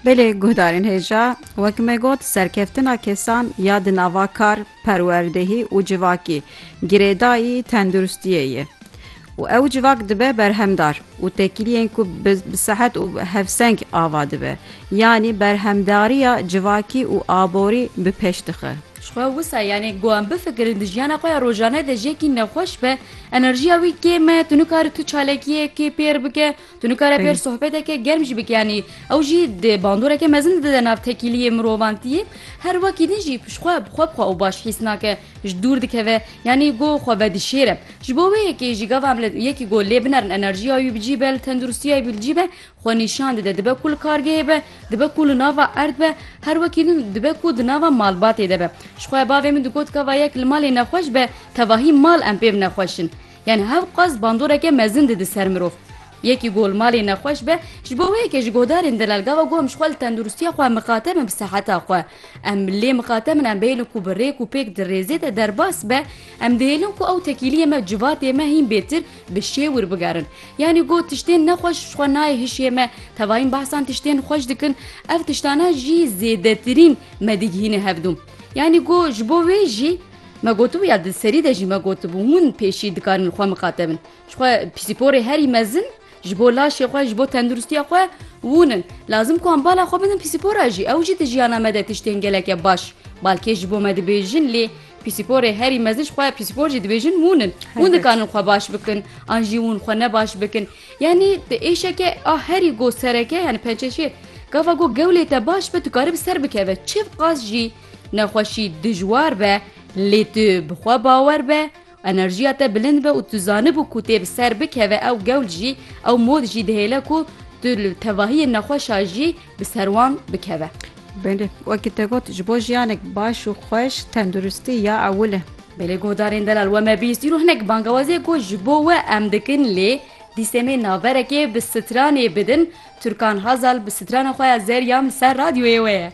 Belê guhdarên hêja wek me got serkeftina kesan ya di nava kar, perwerdehî û civakî girêdayî tenduristiyê ye û ew civak dibe berhemdar û tekiliyên ku bi sehet û hevseng ava dibe yanî berhemdariya civakî û aborî bi pêş dixe. Ji xwe wisa yanê ku em bifikirin di jiyana xwe ya rojane de jiyekî nexweş be, enerjiya wî kêm e, tu nikare tu çalakiyekê pêr bike, Tu nikare pêr sohbeteke germ jî bik yanî ew jî di bandoreke mezin dide nav tekîliyê mirovantiyê her wekî din jî pişxwe bi xwe bi xwe û baş hîs nake ji dûr dikeve yanî go xwe vedişêre ji bo wê yekê jî gava em yekî go lê binerin enerjiya wî bi cî be li tenduristiya wî li cî be xwe nîşan dide dibe ku li kargehê be dibe ku li nava erd be her wekî din dibe ku di nava malbatê de be jixwe bavê min digot gava yek li malê nexweş be tevahî mal em pê binexweşin Yanî hevqas bandoreke mezin dide ser mirov. Yekî ku li malê nexweş be, ji bo wê ye ke ji godarên delelgava ku em ji xwe li tenduristiya xwe mixatem in bi seheta xwe. Em lê mixatem in em bihêlin ku bi rêk û pêk di rêzê de derbas be, em dihêlin ku ew tekîliyê me civatê me hîn bêtir bi şêw wir bigerin. Yanî got tiştên nexweş ji xwe nayê hişê me, tevayîn behsan tiştên xweş dikin, ev tiştana jî zêdetirîn me digihîne hevdûm. Yanî got ji bo wê jî. Me gotibû ya di serî de jî me gotibû hûn pêşî dikarin xwe miqate bin. Ji xwe pîsporê herî mezin ji bo laşê xwe, ji bo tenduristiya xwe hûn in. Lazim ku em bala xwe bidin pîspora jî. Ew jî di jiyana me de tiştên geleke baş balkêş ji bo me dibêjin lê pîsporê herî mezin ji xwe pîspor jî dibêjin hûn in. Hûn dikarin xwe baş bikin an jî hûn xwe ne baş bikin. Yanî di êşeke a herî go sereke yanî pençeşêr gava go gewlê te baş be dikarib ser bikeve çiv qas jî Nexweşî dijwar be lê tu bi xwe bawer be, enerjiya te bilind be û tu zanibû ku tê bi ser bikeve ew gewl jî, ew mod jî dihêle ku tu li tevahiyên nexweşa jî bi ser wan bikeve. Belê, wekî te got ji bo jiyanek baş û xweş tenduristî ya ewil e. Belê guhdarên delal we me bîst îro hinek bangewaziyek ku ji bo we em dikin lê dîsemê naverekê bi stranê bidin Turkan Hazal bi strana xwe ya zeryan li ser radyoyê we ye.